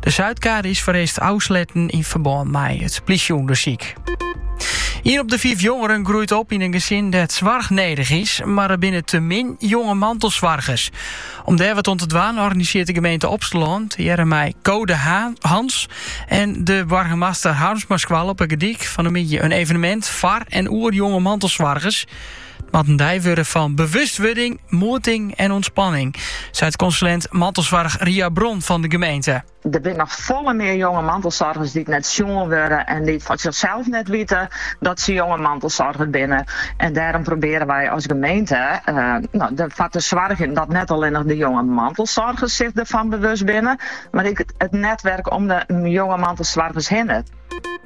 De Zuidkade is foarearst ôfsletten yn ferbân mei it plysjeûndersyk. Ien op de fiif jongeren groeit op yn in gesin dêr't soarch nedich is, mar der binne te folle jonge mantelsoargers. Om dêr wat oan te dwaan organisearret de gemeente Opsterlân tegearre mei Code Hans en de Burgemeester Harmsmaskoalle op 'e Gordyk fan 'e middei in evenemint foar en oer jonge mantelsoargers. It moat in dei wurde fan bewustwurding, moeting en ûntspanning, seit konsulint mantelsoarch Ria Bron fan de gemeente. Der binne noch folle mear jonge mantelsoargers dy't net sjoen wurde en dy't fan sichsels net witte dat se jonge mantelsoarger binne. En dêrom probearje wy as gemeente derfoar te soargjen dat net allinnich de jonge mantelsoargers sich derfan bewust binne, mar ek it netwerk om de jonge mantelsoargers hinne.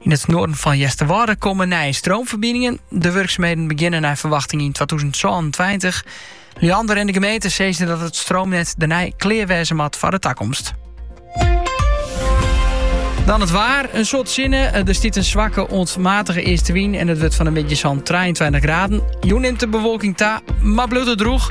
Yn it noarden fan Easterwâlde komme nije stroomferbiningen. De wurksumheden begjinne nei ferwachting yn 2026. Liander en de gemeente sizze dat it stroomnet dêrnei klear wêze moat foar de takomst. Dan it waar, in soad sinne. Der stiet in swakke oant matige eastewyn en it wurdt fan 'e middei sa'n 23 graden. Jûn nimt de bewolking ta, mar bliuwt it droech.